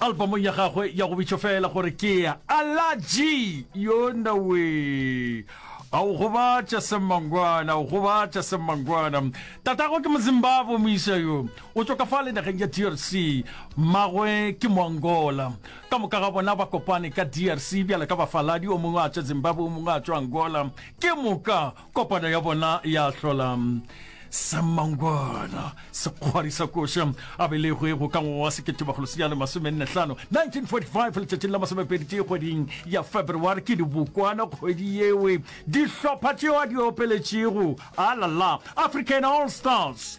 Albamong ya gagwe ya go bitšwa fela gore ke ya Alaji, yonawee a o gobatša semmangwana o gobatša semmangwana tatago ke mozimbabwe moisa yo o tšwa ka fa le nageng ya drc mmagwe ke moangola ka moka ga bona ba kopane ka drc bjale ka bafaladi o mongwe a tšwa zimbabwe o mongwe a tšwa angola ke moka kopano ya bona ya hlola semangwana sekgwari sa koša a belegwe go ka ngwaga wa seketemagolo senyane masomenne-hlano 1945 letšatšing la masomepedi tee kgweding ya february ke dibokwana kgwedi yewe dihlopha tšeo a di opeletšego alala african all stars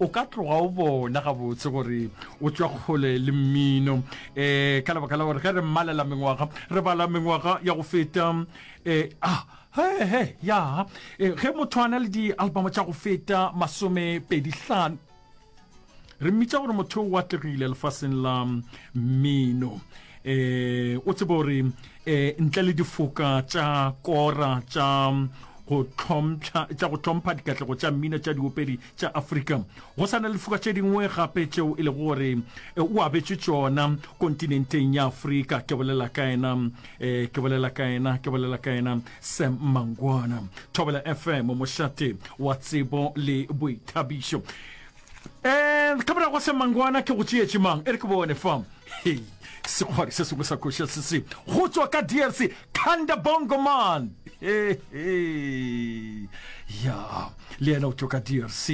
o ka tloga o bona gabotse gore o tšwa kgole le mmino um ka lebaka la gore ge re mmalela mengwaga re bala mengwaga ya go feta um ah, hehe ya eh, ge motho a na le dialbamo tša go feta masome pedi hlano re mmitša gore motho o atlegile lefaseng la mmino eh o tsebe gore eh ntle le difoka tša kora tša go tlhompha tša go tlhompha dikatlego tša mmino tša diopedi tša afrika go sa na lefoka tše dingwe gape tšeo e lego gore e, o abetše tšona kontinenteng ya afrika ke bolela ka ena e, ke bolela ka ena ke bolela ka ena sam mangwana thobela fm mošate wa tsebo le boithabišo um eh, ka morago sam mangwana ke go tšeetše mang e re ke bone fa sekgwari se sengwe sa koša se se go tswa ka drc Thanda Bongo man ya le yena o tšo ka drc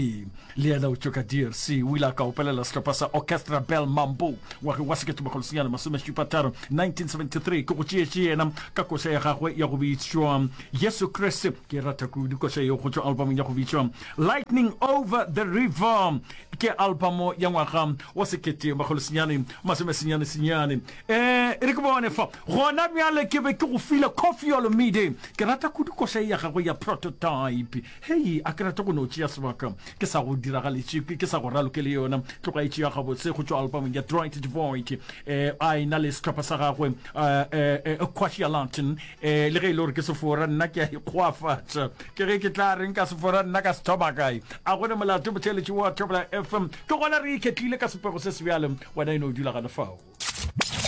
le yena o tšo ka drc o ile a ka opelela sehlopha sa orchestra bell mambo ngwageng wa seketebakgolosenyana masomešupataro 1973 ke go tšeetše yena ka koša ya gagwe ya go bitšwa yesu kriste ke e rata kudu koša yeo go tšwa albamong ya go bitšwa lightning over the river ke albamo ya ngwaga wa seketebakgolosenyane masomesenyane senyane E re ke bone fa. Gona bjale ke be ke go file Koffi Olomide. Ke rata kudu koša ye ya gagwe ya Prototype. Hei, a ke rate go no tšea sebaka ke sa go diragaletše, ke sa go raloke le yona. Tloga e tšea gabotse go tšwa albamong ya Dwight de Void. E a e-na le sehlopha sa gagwe, e, Kwashia Lantern. E, le ge e le gore ke sefora, nna ke a ikgoafatša. Ke ge ke tla reng ka sefora, nna ka se thoma kae? A go ne molato, botheeletši wa Thobela FM. Ke gona re iketlile ka sepego se sebjale, wena e no dula gane fao.